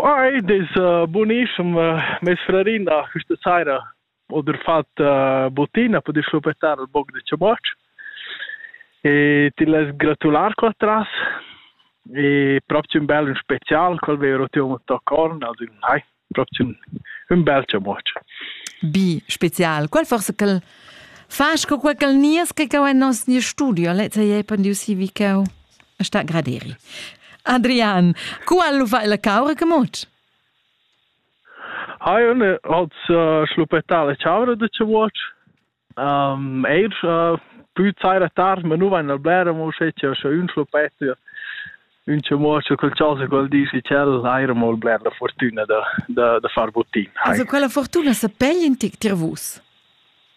Ei dis bunischem. Meis frarin ha questa saira oda fat buttina per dischlupettar ün poc da ciabac e ti less gratular co atras. E propi ün bel, ün special, quel veva ro tier ün tocorn, also ün hai, propi ün, ün bel ciabac. Bi, special. Quel forse quel fas co quel nies che cau en nos nier studio, lezza ei pandiu si vi cau. sta graderi. Adrian, cu al va la caura gemot? Hai un als uh, schluppetà la chaura de ce watch. Um, eir uh, più zaira tardi, ma nu vain al blera mo sche c'è sche un schluppetto un ce watch col chasa col dici cel aira mo bler la fortuna da da da far buttin. Also quella fortuna se pegli in tic tir vus.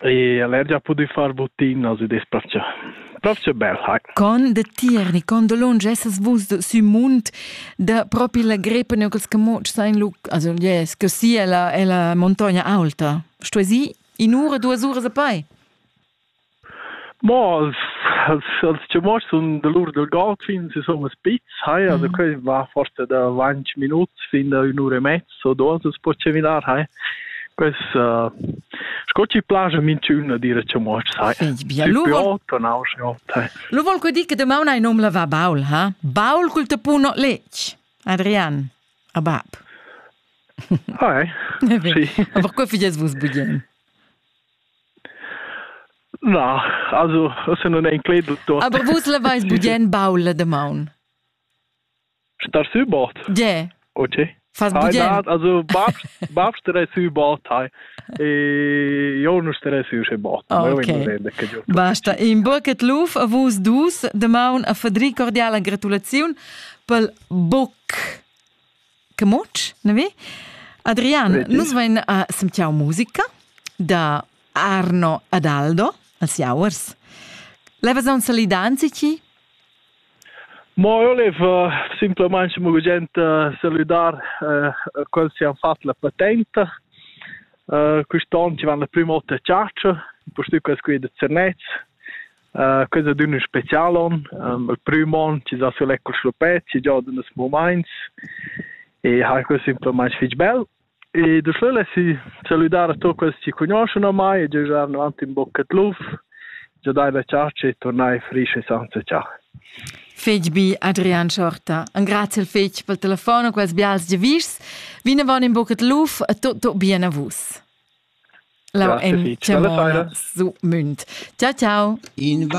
E el ha già pudü far buttinas ed es plövgia plövgia bel, hai. Con da Tierni, con da lunsch essas vus sü mund da propi la grepa ne quels camotsch sein lu, also yes, che sia la ella montagna aulta. Stuesi in ura duas uras a pei. Ma els els els chamots sun da lur del Goldfins, insomma spitz, hai, also mm. quei va forse da 20 minuts fin da 1 ora e mezza. so dos as po cheminar hai pues uh, sco chi plaja minchüna dire cha moch sai bia lu vol lu vol que dir che demaun hai nom la va Baul ha Baul cul tapuno lec Adrian a bab Hai sì aber que fides vus bugien Na, also, se non è incledo. Aber vus la vais bugien Baul la demaun? Star sü bord. Ge. OK. Fas Ai bugen? dat, also Bab, Bab starei sü bord hai. E io non starei sü sche bord. Ma io okay. non che giusto. Basta. In bucket luf a vus dus de maun a Fadri cordiala gratulaziun pel boc che moc, ne vi? Adrian, nus vein a sentiau musica da Arno Adaldo als Jauers. Levas un salidanzi ci? Mo eu laiv simplamaing gugent salüdar quels chi han fat la patenta. Quist'on ci van la prima ota a chatscha, impustüt quels qui da Zernez. Quels a dun ün special on. Il prüm on ci za sü l'Ecoclupet, ci giodan els mumaints e hai quel simplamaing fich bel. E da sch'el essi salüdà da tuot quels chi cugnuoschan a mai e giajar avanti ün boc a l'uf, già dai la chargia e turnai fich e sainza cià. Fetg bi, Adrian Schorta. Engraziel fetg pel telefon e quels bials giavischs. Vinavon in bucet luf e tutto bien a vus. La Grazie, Lavon su Münd. Ciao, ciao. In